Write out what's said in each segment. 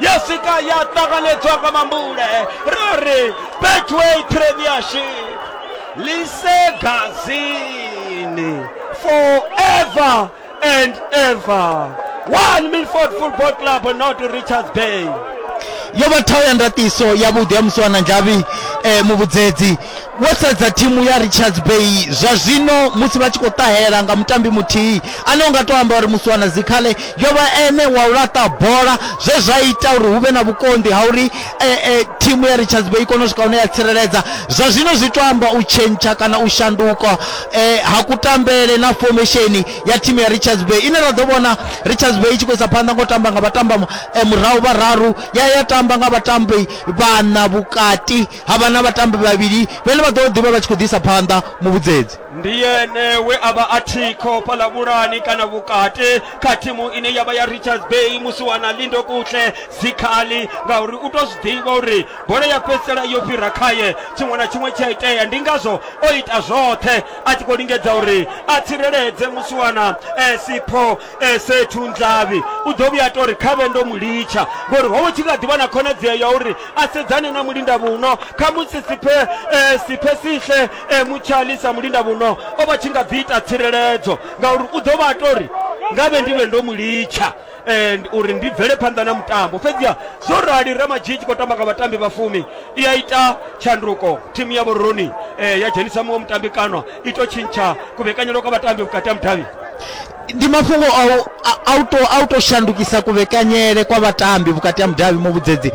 ya sika ya ṱanganedzwa nga mambule ra ri betway premiership lisegazini forever and ever one milford football club not richards bay yo vha thaho ya ndatiso yavhuḓi ya musiwana nzhavhi um muvhudzedzi vho sedza thimu ya richards bay zwa zwino musi vha tshi khou ṱahela nga mutambi muthihi ane u nga tou amba uri musi wana dzikhale yo vha ene wa u laṱa bola zwe zwa ita uri hu vhe na vhukonḓi ha uri e, e, thimu ya richards bay i kone u swika hune ya tsireledza zwa zwino zwi tou amba u tshentsha kana u shanduka e, ha kutambele na fomesheni ya thimu ya richards bay ine ra ḓo vhona richards bay i tshi khou isa phanḓa ngo tamba nga vhatamba e, murahu vhararu ya ya tamba nga vhatambi vhana vhukati ha vha na vhatambi vhavhili vhane vha ḓo ḓivha vha tshi khou ḓisa phanḓa muvhudzedzi ndi yene we a vha a thikho fhaḽa vhulani kana vhukati kha thimu ine ya vha ya richards bay musi wana lindo kutle zikhali ngauri u tou zwi ḓivha uri bola ya fhedzisela yo fhira khaye tshiṅwe na tshiṅwe tshi a itea ndi ngazwo o ita zwoṱhe a tshi khou lingedza uri a tsireledze musi wana eh, sipho Ese Thunzhavhi u ḓo vhuya a tou ri khavhe ndo mu litsha ngori ho vha hu tshi kha ḓi vha na khonadzeo ya uri a sedzane na Mulindavhuno. Khamusi Siphe eh, Siphesihle eh, Mutshali sa Mulindavhuno o vha tshi nga ḓi ita tsireledzo ngauri u ḓo vha a tou ri nga vhe ndi vhe ndo mu litsha eh, uri ndi bvele phanḓa na mutambo fhedziha zwo rali ramadzhii tshi khou tamba nga vhatambi vha fumi i a ita tshanduko thimu ya vhoroni eh, ya dzhenisa muṅwe mutambi kanwa i tou tshintsha kuvhekanyelo kwa vhatambi vhukati ha mudavhi ndi mafhungo a u- a- a u to- a u tou shandukisa kuvhekanyele kwa vhatambi vhukati ha mudavhi muvhudzedzi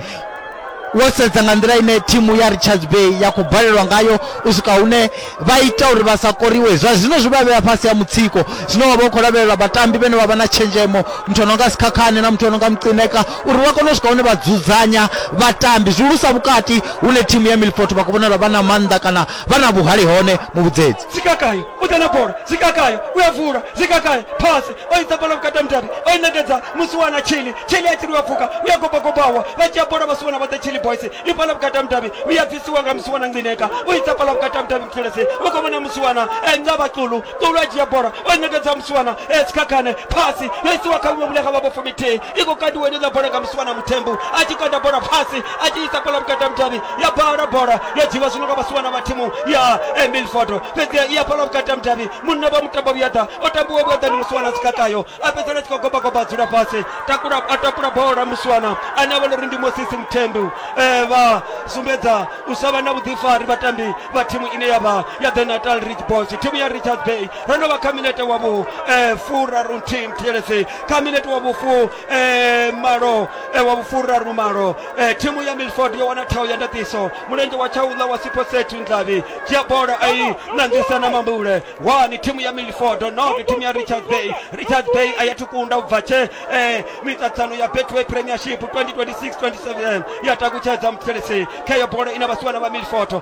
wo sedza nga nḓila ine thimu ya richards bay ya khou balelwa ngayo u swika hune vha ita uri vha sa koriwe zwa zwino zwi vha vhea fhasi ha mutsiko zwino wa vha u khou lavhelela vhatambi vhene vha vha na tshenzhemo muthu ano nga sikhakhane na muthu ano nga mucineka uri vha kone u swika hune vha dzudzanya vhatambi zwihulusa vhukati hune thimu ya milfort vha khou vhonala vha na maanḓa kana vha na vhuhali hone muvhudzedzi zikakayo u ḓa na bola zikakayo u ya vula zikakayo phasi o i bola vhukati ha mudavhi o i ṋekedza musiwana tshili tshili a tshili u ya pfuka u ya gobagobawa vha dzhia bola vhasiwana vhoṱhe tshili boys i bola vhukati ha mudavhi u ya bvisiwa nga musiwana ncineka u i bola vhukati ha mudavhi mfulesi u khou vhona musiwana eh, nga vhaxulu xulu a dzhia bola o i ṋekedza musiwana eh, sikhakhane phasi yo isiwa kha vhuṅwe vhune kha vha vho fumithihi i khou kandiwa ine ḽa bola nga musiwana muthembu a tshi kanda bola phasi a tshi isa bola vhukati ha mudavhi ya bala bola yo dzhiwa zwino nga vhasiwana vha thimu ya emilford fhedziha i ya bola vhukati ha mudavhi munna vha mutambo vhuyaḓa o tambiwa vhuyaḓa ndi musiwana a sikakayo a fhedzisela a tshi khou gobagoba a dzula fhasi takula a takula bola musiwana ane a vhona uri ndi mosisi muthembu Eh, vha sumbedza u sa vha na vhuḓifari vhatambi vha thimu ine ya vha ya the natal rich boys thimu ya richards bay ro no vha kha minete wa vhu eh, furarunthihi muthelesi kha minete wa vhufu eh, malo eh, wa vhufuraru malo eh, thimu ya milford yo wana thao ya ndaṱiso mulenzhe wa tshaula wa siposet ndlavi dzhia bola ai nangisa na mambule wani thimu ya milford noke thimu ya richard bay richard bay a ya thukunda u bva tshe eh, miṱaṱsano ya betway premiership 2026-27 ya takutshedza mupfelesi kheyo bola ina vhasiwana vha milford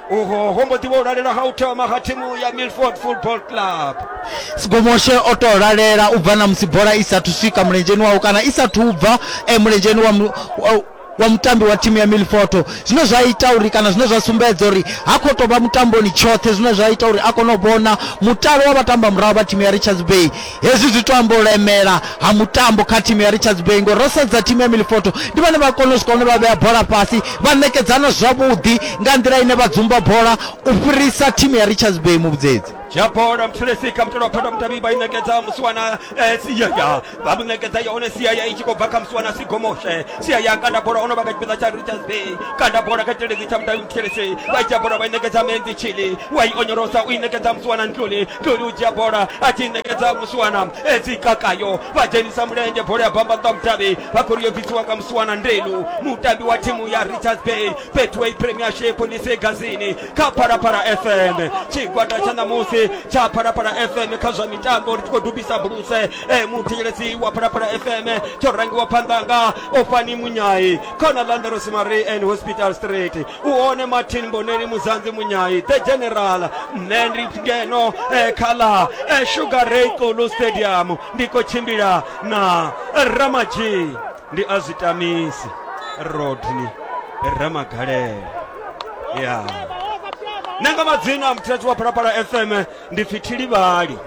uho ho mbo ḓi vha u lalela ha u thoma ha thimu ya milford football club sigomoshe o tou lalela u bva na musi bola i sathu swika mulenzheni wawe kana i sathu bva eh, mulenzheni wa, mu- wa- wa mutambi wa thimu ya milfoto zwine zwa ita uri kana zwine zwa sumbedza uri ha khou tou vha mutamboni tshoṱhe zwine zwa ita uri a kone u vhona mutalo wa vhatamba murahu vha thimu ya richards bay Hezwi zwi tou amba u lemela ha mutambo kha thimu ya Richards Bay ngori ro sedza thimu ya Milifoto ndi vhane vha kona u swika hune vha vhea bola fhasi vha ṋekedzana zwavhuḓi nga nḓila ine vha dzumba bola u fhirisa thimu ya Richards Bay muvhudzedzi. dzhia bola mthulesi kha mutalo wa phanda mutavhi vha i ṋekedza musiwana eh, siaya vha mu ṋekedza yone siaya i tshi khou bva kha musiwana sigomoshe siaya kanda bola ono vha kha tshipiḓa tsha richards bay kanda bola kha tshiledzi tsha mutavhi mthulesi vha i dzhia bola vha i ṋekedza menzi chili wa i onyolosa u i ṋekedza musiwana ntluni toli u dzhia bola a tshi ṋekedza musiwana edzi kakayo vha dzhenisa mulenzhe bola ya bamba nṱha mutavhi vha khou ri yo bvisiwa nga musiwana ndelu mutambi wa thimu ya richards bay betway premiership lise gazini kha phalaphala fm tshigwada tsha ṋamusi tsha phalaphala fm kha zwa mitambo ri tshi khou dubisa buluse e muthetshelesi wa phalaphala fm tsho rangiwa phanḓa nga ofani munyai khona landerosimari and hospital street u hone martin boneli muzanzi munyai the general nṋe ndi ngeno eh, kha ḽa eh, sugar ray kulu stadium ndi khou tshimbila na ramadzhi ndi a zwi tamisi rodney ramagalela ya yeah. nṋe nga madzina muthetsi wa phalaphala fm ndi pfi thilivhali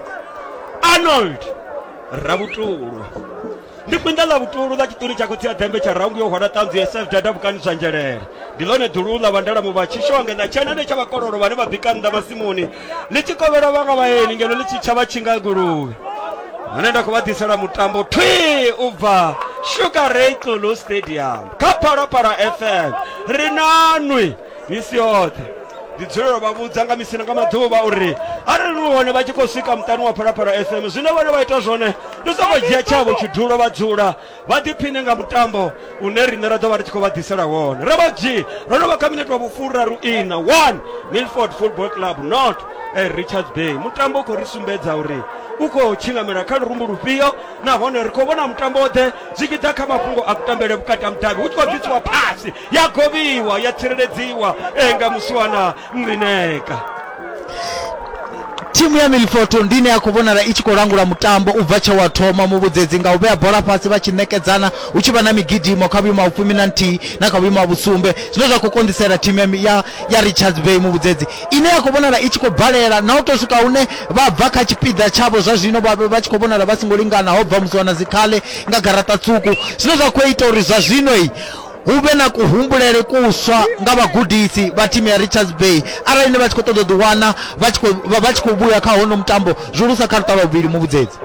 arnold ravhutulo ndi kwinda ḽa vhutulu ḽa tshiṱuni tsha khotsi ya ḓembe tsha raungu yo hwala ṱanzu ya sf dada vhukani zwa nzhelele ndi ḽone ḓulu ḽa vhandala muvha tshishonge na tshenane tsha vhakololo vhane vha bika nnḓa masimuni ḽi tshi kovhela vhanga vhaeni ngeno ḽi tshi tsha vha tshinga guluvhe hune nda khou vha ḓisela mutambo thwi u bva sugar ray tlulu stadium kha phalaphala fm ri nanwi misi yoṱhe ndi dzulela vha vhudza nga misina nga maḓuvha uri arali ni hone vha tshi khou swika muṱani wa phalaphala fm zwine vhone vha ita zwone ndi sokou dzhia tshavho tshidulo vha dzula vha ḓiphine nga mutambo une riṋe ra ḓo vha ri tshi khou vha ḓisela wone ro vha dzhi ro no vha kha minete wa vhufuraru ina one milford football club not eh, richards bay mutambo u khou ri sumbedza uri u khou tshinamela kha lurumbu lufhio nahone ri khou vhona mutambo oḓhe zwi tshi ḓa kha mafhungo a kutambele vhukati ha mudavhi hu tshi khou bvisiwa phasi ya govhiwa ya tsireledziwa enga muswana nrineka thimu ya milfoto ndi ine ya khou vhonala i tshi khou langula mutambo u bva tshe wa thoma muvhudzedzi nga u vhea bola fhasi vha tshi ṋekedzana hu tshi vha na migidimo kha vhuimo ha vhufumi na nthihi na kha vhuimo ha vhusumbe zwine zwa khou konḓisela thimu ya mi- ya, ya richards bay muvhudzedzi ine ya khou vhonala i tshi khou balela na u tou swika hune vha bva kha tshipiḓa tshavho zwa zwino vha vha tshi khou vhonala vha songo lingana ho bva musi wana dzikhale nga garaṱa tswuku zwine zwa khou ita uri zwa zwino i hu vhe na kuhumbulele kuswa nga vhagudisi vha thimu ya richards bay arali ni vha tshi khou ṱoḓa u ḓiwana vha tshi khou- vha- vha tshi khou vhuya kha hono mutambo zwihulusa kha luṱa lwa vhuvhili muvhudzedzi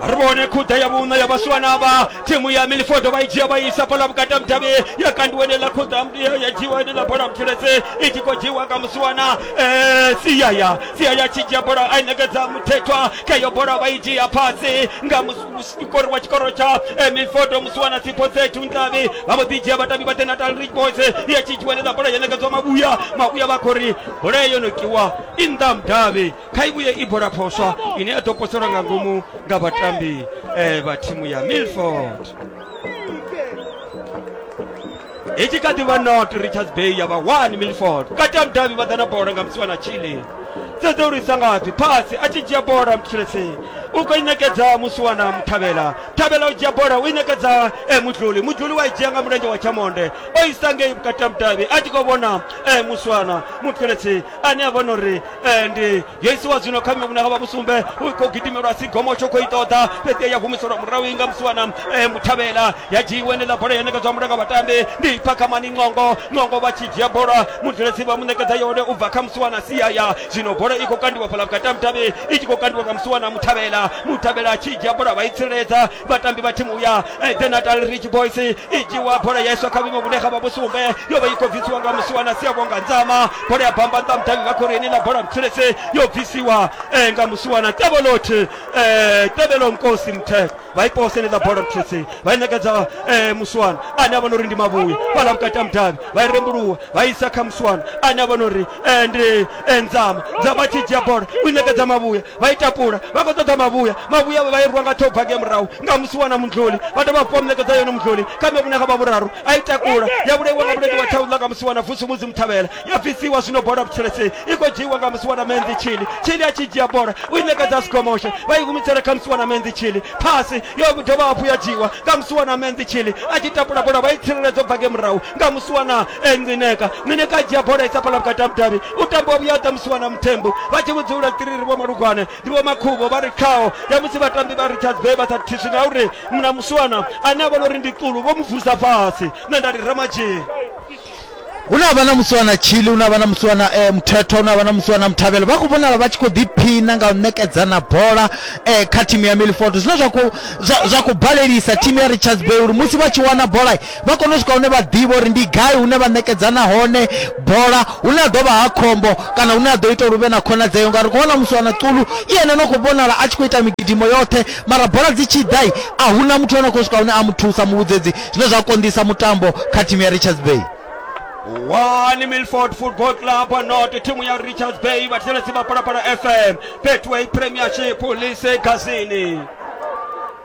ri vhone khuḓa ya vhuṋa ya vhasiwana vha thimu ya milifodo vha i dzhia vha i isa bola vhukati ha mudavhi ya kandiwa enela khuḓa mdia ya dzhiwa enela bola mutheletse i tshi khou dzhiwa nga musiwana eh, siyaya siyaya tshi dzhia bola a i nekedza muthethwa kha iyo bola vha i dzhia fhasi nga mus- mukori wa tshikoro tsha eh, mifodo musiwana sipho sethu ntavi vha mbo ḓi dzhia vhatambi vha the natal rich boys ya tshi tshiwanedza bola ya ṋekedzwa mavhuya mavhuya vha khori bola yo no kiwa i nnḓa mudavhi kha i vhuye i bola phoswa ine ya ḓo poselwa nga ngomu nga vhatambi eh, vha thimu ya milford i tshi kha ḓi vha not richards bay ya vha one milford vhukati ha mudavhi vha ḓa na bola nga musiwa na chile sedza uri isa ngafhi phasi a tshi dzhia bola mthulese u khou i ṋekedza musiwana muthavhela thavhela u dzhia bola u i ṋekedza eh, mudluli mudluli wa i dzhia nga mulenzhe wa tshamonde o isa ngei vhukati ha mudavhi a tshi khou vhona eh, musiwana muthelesi ane a vhona uri eh, ndi yesu wa zwino kha miuna havha vhusumbe u khou gidimelwa sigomo tsho khou i ṱoḓa fhedzi ya humiselwa murahu inga musiwana eh, muthavhela ya dzhiiwe nela bola ya nekedzwa mulanga vhatambi ndi phakamani nqongo nqongo vha tshi dzhia bola mudzulesi vha mu nekedza yone u bva kha musiwana siaya zwino bola i khou kandiwa fhala vhukati ha mutavhi i tshi khou kandiwa nga musiwana muthavhela muthavhela a tshi dzhia bola vha i tsireledza vhatambi vha thimu ya eh, the natal rich boys i dzhiwa bola ya iswa kha vhuimo vhune ha vha vhusumbe yo vha i khou bvisiwa nga musi wana sia vhonga nzama bola ya bamba nṱha mudavhi vha khorini na bola mthulese yo bvisiwa eh, nga musi wana tebelot eh, tebelo nkosi mthetho vha i poseledza bola mthulese vha i ṋekedza eh, musiwana ane a vhona uri ndi mavhuyi fhala vhukati ha mudavhi vha i rembuluwa vha i isa kha musiwana ane a vhona uri eh, ndi eh, nzama nzama tshi dzhia bola u i ṋekedza mavhuya Vha ita pula, vha khou ṱoḓa mavhuya. Mavhuya avho vha irwa nga ṱhogwa ngei murahu nga musi wo wana mundluli. Vha dovha hafhu vha mu ṋekedza yone mundluli kha ṅwevhune ha vha vhuraru. A i takula, ya vhulaiwa nga vhulendi wa ṱhauḽa nga musi wo wana vusu Mudzimu Thavhela. Ya bvisiwa zwino bola vhutshelesei i khou dzhiiwa nga musi wo wana Menzi Tshili. Tshili a tshi dzhia bola, u i ṋekedza a si gomoshe. Vha i humisela kha musi wo wana Menzi Tshili. Phasi, yo dovha hafhu ya dzhiiwa nga musi wo wana Menzi Tshili. A tshi tapula bola vha i tsireledza u bva ngei murahu nga musi wo wana Ncineka. Ncineka a dzhia bola a i sapela vhukati ha mudavhi. u tambiwa vhuya ha ṱamusiwa na muthembu vha tshi vhudzula tiriri vho malugwane ndi vho makhuvho vha ri khaho ya musi vhatambi vha richards bay vha sa thiswi na uri mna muswana ane a vhona uri ndi qulu vho mu vusa fhasi nṋe nda ri ramadzhini hu na vha na muswana chili hu na vha na muswana eh, muthetho hu na vha na muswana muthavhelo vha khou vhonala vha tshi khou ḓiphina nga u ṋekedzana bola eh, kha thimu ya milford zwine zwa khou- zwa- zwa khou balelisa thimu ya richards bay uri musi vha tshi wana bola vha kone u swika hune vha ḓivha uri ndi gai hune vha ṋekedzana hone bola hune a ḓovha ha khombo kana hune a ḓo ita uri vhe na khonadzeo ngauri khou vhona musi wana ṱulu i ene no khou vhonala a tshi khou ita migidimo yoṱhe mara bola dzi tshi ḓai a hu na muthu ane khou swika hune a mu thusa muvhudzedzi zwine zwa konḓisa mutambo kha thimu ya richards bay one milford football club not thimu ya richards bay vhathetshelesi vha palapala fm betway premiership lise gazini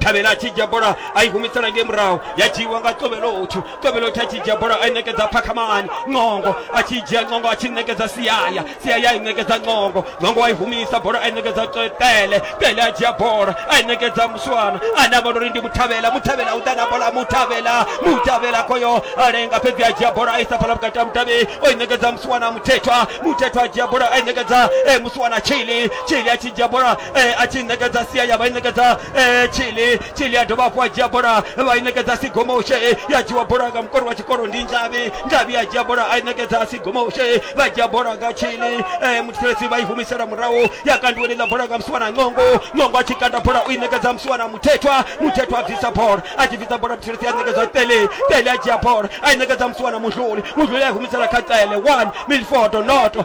thabela a tshi dzhia bola a i humisela ngei murahu ya dzhiiwa nga tovhelothu tovhelothu a tshi dzhia bola a i ṋekedza phakhamani ncongo a tshi dzhia ncongo a tshi ṋekedza siaya siaya a i ṋekedza ncongo ncongo a i humisa bola a i ṋekedza tele tele a dzhia bola a i ṋekedza muswana a ne a vhona uri ndi muthavhela muthavhela u ḓa na bola muthavhela muthavhela khoyo a lenga fhedzi a dzhia bola a isa fhala vhukati ha mutavhi o i ṋekedza muswana muthethwa muthethwa a dzhia bola a i ṋekedza eh, muswana chili chili a tshi dzhia bola eh, a tshi ṋekedza sia ya vha i ṋekedza eh, chili chili a dovha hafhu a dzhia bola vha i ṋekedza sigomoshe ya dzhiwa bola nga mukori wa tshikolo ndi nzhavhi nzhavhi a dzhia bola a i ṋekedza sigomoshe vha dzhia bola nga chili eh, muthetshelesi vha i humisela murahu ya kandiweni ḽa bola nga musiwana ngongo ngongo a tshi kanda bola u i ṋekedza musiwana muthethwa muthethwa a bvisa bola a tshi bvisa bola muthetshelesi a ṋekedza tele tele a dzhia bola a i ṋekedza musiwana muhluli muhluli a i humisela kha tsele one milfodo noto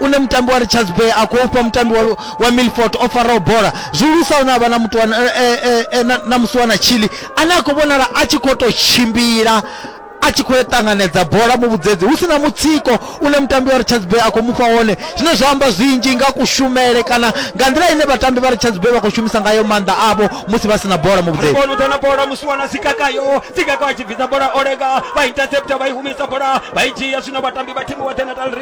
une mutambi wa richards bay a khou fha mutambi wa, wa milfort o faraho bola zwihulusa une a vha na mutu wa- eh, eh, eh, eh, na- na musi wa na chili ane a khou vhonala a tshi khou tou tshimbila a tshi khou ya ṱanganedza bola mu vhudzedzi hu si na mutsiko une mutambi wa richards bay a khou mufha wone zwine zwa amba zwinzhi nga kushumele kana nga nḓila ine vhatambi vha richards bay vha khou shumisa ngayo maanḓa avho musi vha si na bola mu vhudzedzi Ribonu tana bola musiwana sikakayo sikaka achibvisa bola olega vaintercepta vaihumisa bola vaijiya zvino vatambi vatimu watenatal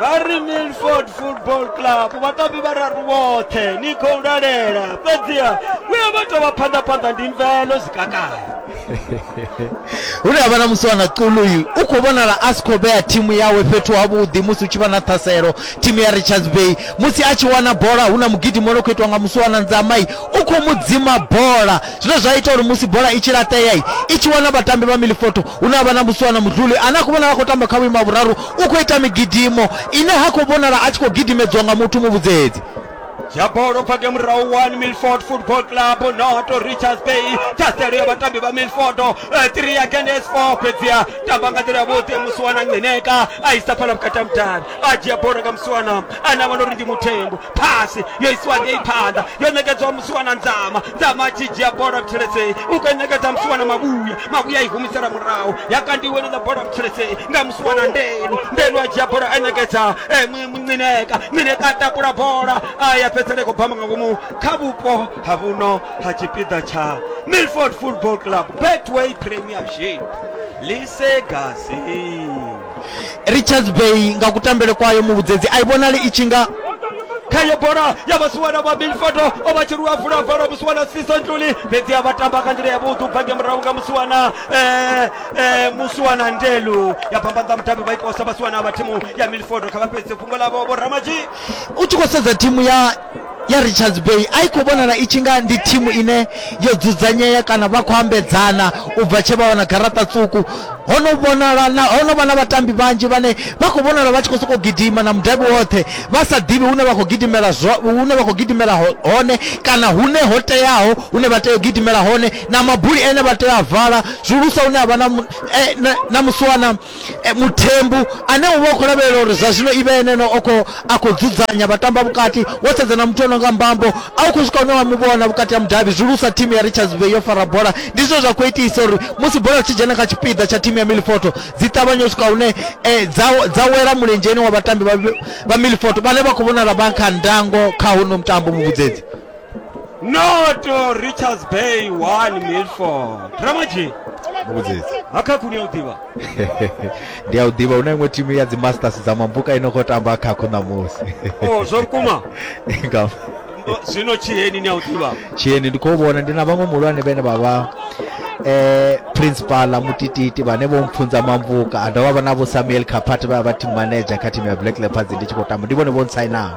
vha ri milford football club vhatambi vhararu vhoṱhe ni khou lalela fhedziha vhuya vha tou vha phanḓaphanḓa ndi mvelo zwikakala hune ha vha na musiwana quluyu u khou vhonala a si khou vhea thimu yawe fhethu havhuḓi musi hu tshi vha na ṱhaselo thimu ya richards bay musi a tshi wana bola hu na mugidimo no khou itiwa nga musiwana nzamai u khou mu dzima bola zwine zwa ita uri musi bola i tshi laṱea i tshi wana vhatambi vha milifoto hune ha vha na musuwana mudluli ane a khou vhonala a khou tamba kha vhuimo ha vhuraru u khou ita migidimo ine ha khou vhonala a tshi khou gidimedziwa nga muthu muvhudzedzi ya bolo fake murahu 1 milford football club noto richards bay thaselo ya vhatambi vha milford 3 eh, ya kendes 4 fhedziha tamba nga nḓila yavhuḓi musiwana ngeneka a isa phala vhukati ha mudavhi a dzhia bolo nga musiwana ane a vhona uri ndi muthengo phasi yo isiwa ngei phanḓa yo ṋekedzwa musiwana nzama nzama a tshi dzhia bola mtsheledzei u kho ṋekedza musiwana mavhuya mavhuya i humisela murahu ya kandiwe ḽa bola mtsheledzei nga musiwana ndenu ndenu a dzhia bola a ṋekedza eh, mineka mineka a takula bola a ya fhedzisela i khou bamba nga ngomu kha vhupo ha vhuno ha tshipiḓa tsha milford football club betway premiership lisegasi richards bay nga kutambele kwayo muvhudzedzi a i vhonali i tshi nga khaye bola ya vhasiwana vha milfoto o vha tshiruwa vula bola musiwana sisa ntuli fhedzi a vha tamba nga nḓila yavhuḓi u bva nge murahu nga musiwana eh, eh, musiwana ndelu ya pambanza mudavhi vha ikosa vhasiwana vha thimu ya milfoto kha vha fhedze fhungo lavho vho ramaji u tshi khou sedza thimu ya ya Richards Bay a i khou vhonala i tshi nga ndi thimu ine yo dzudzanyea kana vha khou ambedzana u bva tshe vha wana garaṱa ṱuku ho no vhonala na ho no vha na vhatambi vhanzhi vhane vha khou vhonala vha tshi khou sokou gidima na mudavhi woṱhe vha sa ḓivhi hune vha khou gidimela hune vha khou gidimela hone kana hune ho teaho hune vha tea u gidimela hone na mabuli ene vha tea a vala zwihulusa hune ha vha na e, na musiwana E, Muthembu ane u vha u khou lavhelela uri zwa zwino i vhe ene ane o khou a khou dzudzanya vhatamba vhukati wo sedza na muthu o no nga mbambo a u khou swika hune wa mu vhona vhukati ha mudavhi zwihulusa thimu ya richards bay yo fara bola ndi zwine zwa khou itisa uri musi bola tshi dzhena kha tshipiḓa tsha thimu ya milifoto dzi ṱavhanye u swika hune e, dza, dza wela mulenzheni wa vhatambi vha, vha milifoto vhane vha khou vhonala vha kha ndango kha hono mutambo muvhudzedzi noto richards bay 1 milford ramaji mbudzidzi akhaku ni a u ḓivha ndi a u ḓivha hu na iṅwe timu ya dzimasters dza mambuka ino khou tamba khakhu ṋamusi o zwa vhukuma Nga- O, zwino tshiheni ni a u ḓivha tshieni ndi khou vhona ndi na vhaṅwe muhulwane vhene vha vha eh principala mutititi vhane vho mpfunza mambuka a dovha vha na vho samuel kapati vha vha team manager kha timu ya black leopards ndi tshi khou tamba ndi vhone vho ntsainaho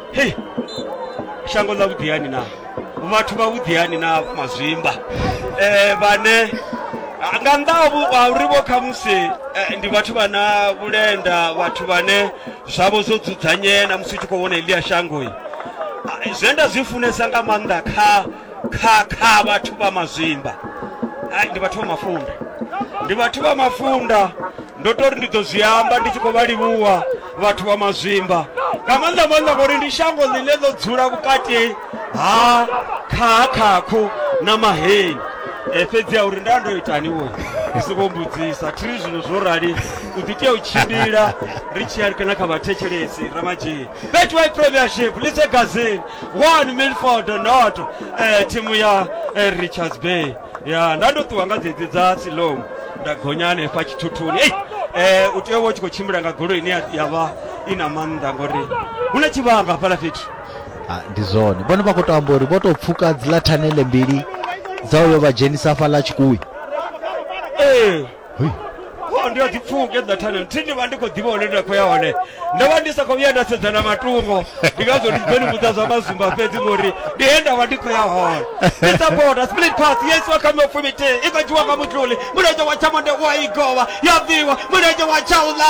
hei shango ḽa vhuḓiyani na vhathu vha vhuḓiyani na mazwimba um vhane nga nnḓa ha uri vho khamusi eh, ndi vhathu vha na vhulenda vhathu vhane zwavho zwo dzudzanyea na musi u tshi khou vhona elia shangoi ah, zwe nda zwi funesa nga maanḓa kha kha kha vhathu vha mazwimba Ai, ndi vhathu vha mafunda ndi vhathu vha mafunda ndo tori ndi ḓo zwi amba ndi tshi khou vha livhuwa vhathu vha mazwimba nga maanḓa maanḓa ngori ndi shango ḽine ḽo dzula vhukati ha khahakhakhu na maheni Eh, fhedzi ya uri nda ndo itani wo ndi songo mbudzisa thiri zwino zwo rali u ḓi tea u tshimbila ri tshi ya kana kha vhathetshelesi ramadzheni betway premiership lise gazini 1 milford not eh, thimu ya eh, richards bay ya nda ndo ṱuwa nga dzedzi dza silom nda gonya hanefha tshithuthuni ei eh, u tea uvha u tshi khou tshimbila nga golo ine ya- ya vha i na maanḓa ngori hu na tshivhanga hafhala fhethu Ah, ndi zwone vhone vha khou tou amba uri vho tou pfuka dziḽa thanele mbili dza uyo vha dzhenisa hafhaḽa tshikuwi ee Hoi. Oh, ndi a dzi pfuke dza thanelo thi ndi vha ndi khou ḓivha hone nda khou ya hone ndo vha ndi sa khou vhuya nda sedza na matungo ndi ngazwo ndi tshi ḓo ni vhudza zwa mazumba fhedzi ngori ndi he nda vha ndi khou ya hone ndi sa boda split pass yes wa kha mofumiti i khou dzhiwa nga mutluli mulenzhe wa tshamonde u a i govha ya bviwa mulenzhe wa tshaula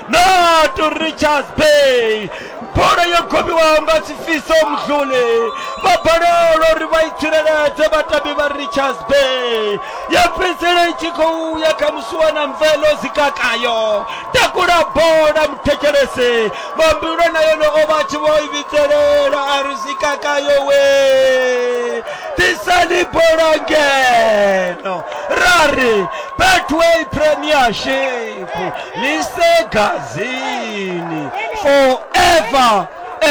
natu richards bay bola yo gobiwaho nga sifiso mzule vha balelwa uri vha i tsireledze vhatambi vha richards bay ya fhedzisela i tshi khou ya kha musuwa na mvelo zikakayo takula bola muthetshelese vhambilwa na yone o vha tshi vho i vhidzelela a ri zikakayo we tisani bola ngeno ra ri betway premiership lisegazini forever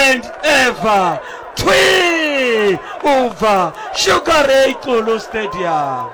and ever twi ubva sugar ray xulu stadium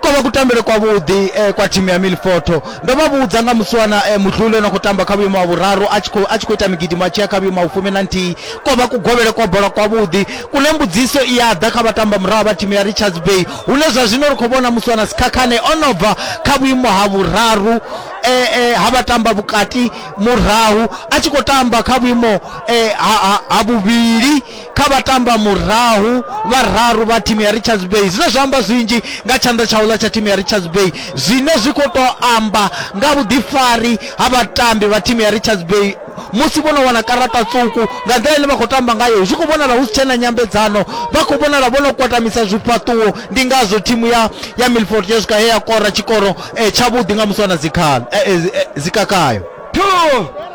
ko vha kutambele kwavhuḓi eh, kwa thimu ya milfoto ndo vha vhudza nga musiwana eh, muhluli ono khou tamba kha vhuimo ha vhuraru a tshi khou- a tshi khou ita migidimo a tshi ya kha vhuimo ha vhufumi na nthihi ko vha kugovhele kwa bola kwavhuḓi kune mbudziso i ya ḓa kha vhatamba murahu vha thimu ya richards bay hune zwa zwino ri khou vhona muswana sikhakhane o no bva kha vhuimo ha vhuraru e, e, ha vhatamba vhukati murahu a tshi khou tamba kha vhuimo e, ha, ha, ha vhuvhili kha vhatamba murahu vhararu vha thimu ya richards bay zwine zwa amba zwinzhi nga tshanḓa tsha uḽa tsha thimu ya richards bay zwine zwi khou tou amba nga vhuḓifari ha vhatambi vha thimu ya richards bay musi vho no wana karaṱa tswuku nga nḓila ine vha khou tamba ngayo zwi khou vhonala hu si tshena nyambedzano vha khou vhonala vho no kwatamisa zwifhaṱuwo ndi ngazwo thimu ya ya milford ya swika he ya kora tshikoro eh, tshavhuḓi nga musi wana dzikhala eh, eh, eh, dzikakayo two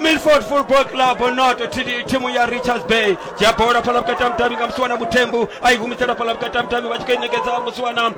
milford football club not tidi timu ya richards bay ya bola phala vhukati ha mudavhi nga musiwana muthembu a i humisela phala vhukati ha mudavhi vha tshi khou i ṋekedza musiwana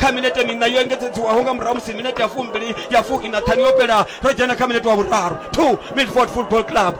kha minete miṋa yo engedzedziwaho nga murahu musi minete ya fumbili ya fuki na ṱhanu yo fhela ro dzhena kha minete wa vhuraru two milford football club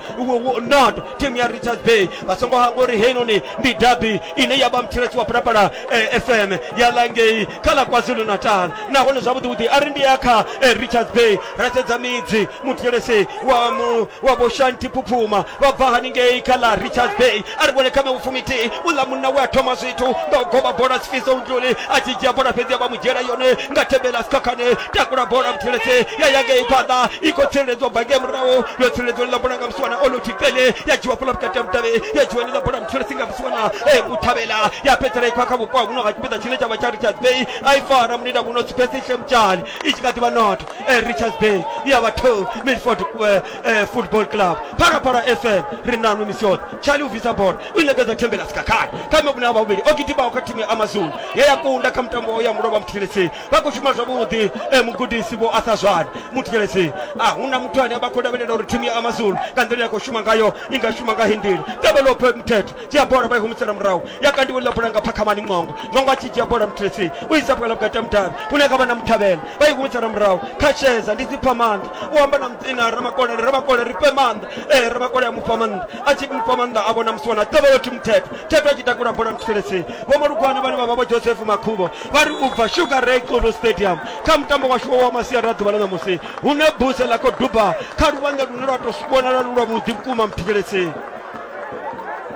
not team ya richards bay vha songo hangwa uri heinoni ndi dabi ine ya vha mthilesi wa phalaphala eh, fm ya langei kha ḽa kwazulu natal nahone zwavhuḓivhuḓi a ri ndi ya kha eh, richards bay ra sedza midzi muthetshelesi wa mu wa vho shanti phuphuma vha bva haningei kha ḽa richards bay a ri vhone kha mevhufumithihi uḽa munna we a thoma zwithu nga u goba bola sifiso ntluli a tshi dzhia bola fhedzi a vha mu dzhiela yone nga thembela sikhakhane takula bola muthetshelesi ya ya ngei phanḓa i khou tsireledzwa bva ngei murahu yo tsireledzwa ḽa bola nga musiwana oloti pele ya dzhiwa fhala vhukati ha mutavhe ya dzhiwa ḽa bola muthetshelesi nga musiwana e muthavhela ya fhedzisela i khwa kha vhupo ha huno ha tshipiḓa tshine tsha vha tsha richards bay a i fara munida muno sipesihle mutshali i tshi kha ḓi vha noto eh, richards bay ya batho milford eh, eh, football club parapara fm ri nanu misi yoṱhe charlie uvisa bola u inekedza thembela sikakhala kha mebune a vhavhili o gidimaho kha thimu ya amazulu ye ya kunda kha mutambo wa ya mulovha muthelesi vha khou shuma zwavhuḓi eh, mugudisi vho asa zwani muthelesi a hu na muthu ane vha khou lavhelela uri thimu ya amazulu nga nḓila ya khou shuma ngayo i nga shuma nga hindila tevhelope mthethe dzhia bola vha i humisela murahu ya kandiwa ḽa bola nga phakhamani ṅongo ṅongo a tshi dzhia bola mutresi u isa vhukela vhukati ha mudavhi hune kha vha na muthavhela vha i humisela murahu kha sheza ndi dzipfa maanḓa u amba na mudzina ramakolele ramakolele ri fhe maanḓa ee ramakole a mufha maanḓa a tshi mufha maanḓa a vhona musi wana tevhelo thi muthetho thetho a tshi takula bola mutresi vho malugwana vhane vha vha vho joseph makhuvho vha ri u bva sugar ray xulu stadium kha mutambo washu wa masiari a ḓuvha ḽa ṋamusi hune buse ḽa khou duba kha luvhanḓe lune lwa tou vhonala lu lwa vhuḓi vhukuma muthetshelesi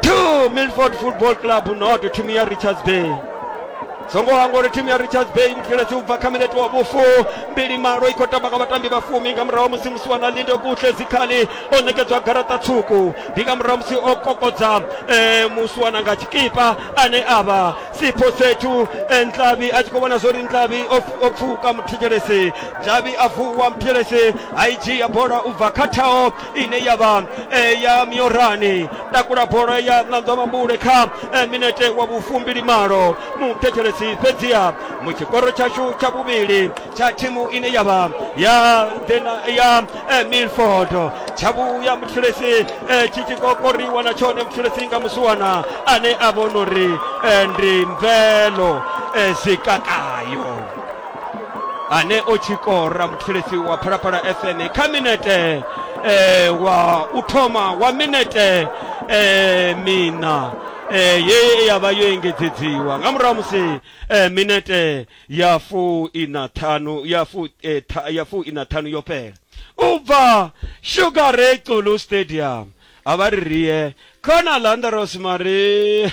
2 milford football club noto timu ya richards bay songo wangu uri timu ya richards bay mukile siubva kamineti wa bufu mbili malo iko tabaka vatambi vafumi nga murahu musi musi wana linde kuhle zikhali o nekedzwa garata tswuku ndi nga murahu musi o kokodza eh, musi wana nga tshikipa ane ava sipho sethu eh, ntlavi a tshi khou vhona zwori ntlavi o pf- o pfuka muthetshelesi ntlavi a vuwa muthetshelesi a i dzhia bola ubva kha thaho ine ya vha eh, ya miorani takula bola ya nanzwa mambule kha eh, minete wa vhufumbili malo muthetshelesi fhedziha mu tshikoro tshashu tsha vhuvhili tsha thimu ine ya vha ya Dena- ya eh, milford tsha vhuya muthetshelesi eh, tshi tshi kokoriwa na tshone muthetshelesi nga musiwana ane a vhona uri eh, ndi mvelo eh, zikakayo ane o tshi kora muthilisi wa phalaphala fm kha minete eh, wa u thoma wa minete eh, mina eh, ye ya vha yo engedzedziwa nga murahu musi eh, minete ya fu ina ṱhanu ya fu eh, tha- ya fu ina ṱhanu yo fhela u bva sugar ray xulu stadium a vha ri rie khona landaros mari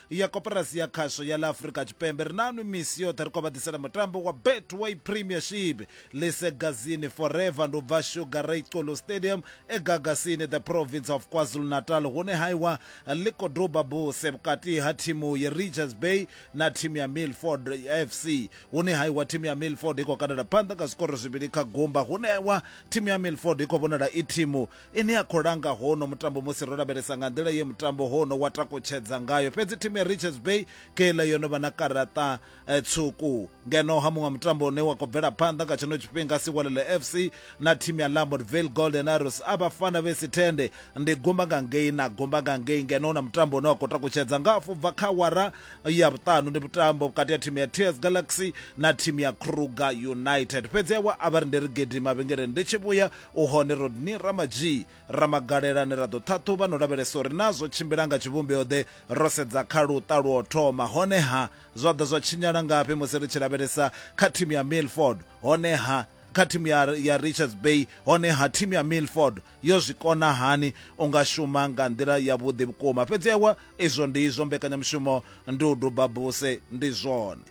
ya koporasi ya khasho ya ḽa afurika tshipembe ri nanu misi yoṱhe ri khou vha ḓisela mutambo wa betway premiership lisegazini forever ndi u bva sugar ray colo stadium egagasini the province of kwazulu natal hune haiwa ḽi khou duba buse vhukati ha thimu ya richards bay na thimu ya milford fc hune haiwa thimu ya milford i khou kandela phanḓa nga zwikoro zwivhili kha gumba hune haiwa thimu ya milford i khou vhonala i thimu ine ya khou langa hono mutambo musi ro lavhelesa nga nḓila ye mutambo hono wa takutshedza ngayo fhedzi thimu ya richards bay keiḽa yo no vha na karaṱa eh, tsuku ngeno ha muṅwe mutambo une wa khou bvela phanḓa nga tshino tshifhinga siwalele fc na thimu ya lamortville golden arrows a vhafana vhe si tende ndi gumba nga ngei na gumba nga ngei ngeno hu na mutambo une wa khou takutshedza nga afho bva kha wara ya vhuṱanu ndi mutambo vhukati ya thimu ya ts galaxy na thimu ya kruger united fhedzi awa a vha ri ndi ri gidima vhengeleni ndi tshi vhuya U hone Rodney Ramadzhii Ramagalelani ra ḓo ṱhaṱhuvha no lavhelesa uri naa zwo tshimbila nga tshivhumbeo-ḓe ro sedza kha luṱa lwo thoma, hone-ha zwa ḓa zwa tshinyala ngafhi musi ri tshi lavhelesa kha thimu ya Milford, hone-ha kha thimu ya, ya Richards Bay, hone-ha thimu ya Milford yo zwi kona hani u nga shuma nga nḓila yavhuḓi vhukuma. Fhedzi ewa, izwo ndi izwo, mbekanyamushumo ndi u duba buse, ndi zwone.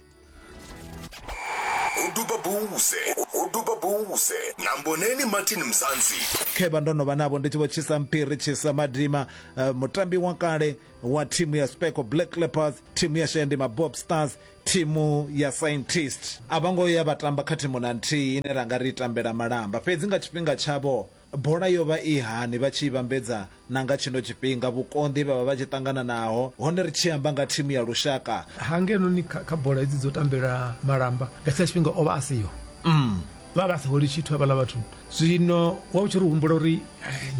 uduba buse uduba buse namboneni martin mzansi khevha ndo no vha navho ndi tshi vho tshisa mphiri tshisa madima uh, mutambi wa kale wa thimu ya speco black leopards thimu ya shendi mabob stars thimu ya scientist a vho ngo ya vha tamba kha thimu na nthihi ine ra nga ri tambela malamba fhedzi nga tshifhinga tshavho Bola yo vha i hani vha tshi i vhambedza na nga tshino tshifhinga, vhukonḓi he vha vha vha tshi ṱangana naho, hone ri tshi amba nga thimu ya lushaka? Ha ngenoNi kha, kha bola hedzi dzo tambela malamba, nga tshetshiḽa tshifhinga o vha a siho. Umm. Vha vha sa holi tshithu havhaḽa vhathu. Zwino wa u tshi ri humbula uri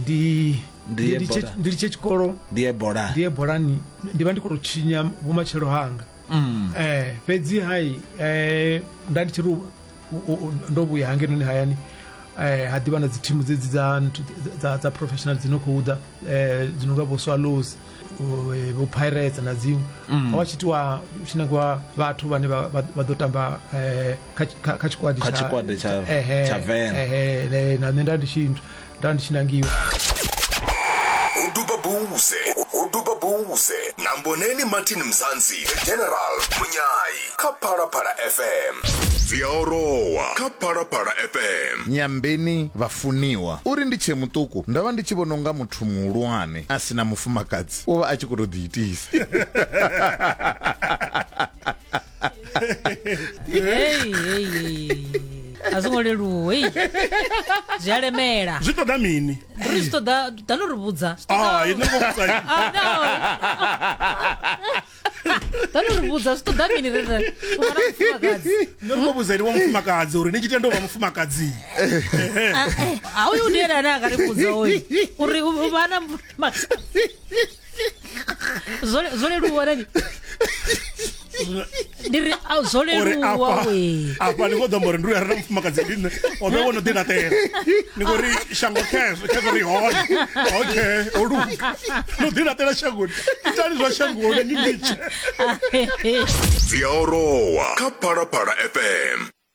ndi, Ndi ye ndi litshe, bola. ndi litshe tshikolo, Ndi ye bola. ndi ye bolani, ndi vha ndi khou tou tshinya vhumatshelo hanga. Umm. Eh, fhedzi hai, eh, nda ndi tshi ri u- ndo vhuya hangenoni hayani eh, ha ḓivha na dzi thimu dzedzi dza professional dzi no khou ḓa eh, dzi no nga vho swallows eh, vho pirates na dziṅwe mm. wa tshitiwa tshi nangiwa vhathu vhane vha ḓo tamba kha tshikwadi tsha vena na nṋe nda ndi tshinthu nda ndi tshi nangiwa uduba buze uduba buze na mboneni martin mzansi the general munyayi kha phalaphala fm dzi a orowa kha phalaphala fm nyambeni vhafuniwa uri ndi tshe muṱuku ndo vha ndi tshi vhona unga muthu muhulwane a si na mufumakadzi u vha a tshi khou tou ḓiitisa Hey, hey, hey. a zwo ngo leluwa ei. zwi a lemela zwi ṱoḓa mini ri zwi ṱoḓa ḓa no ri vhudza Ah, ini ngo vhudza ini. Ah, no. ḓa no ri vhudza zwi ṱoḓa mini ri ri u vha na mufumakadzi Nṋe ndo vhudza ini wa mufumakadzi uri ni tshi tenda u vha mufumakadzi a uyu ndi ene ane a nga ri vhudza oyu uri u vha na mufumakadzi zwo zwo leluwa rani ndi ri a zwo uri leluwa afha we afha ni khou ḓo amba uri ndi uya rena mufumakadzi ndi nṋe o ḓo wono ḓi laṱela ni khou ri shango khezwo khezwo ri hone okay o luga no ḓi laṱela shangoni itani zwa shangoni ni litshe dzi a orowa kha phalaphala fm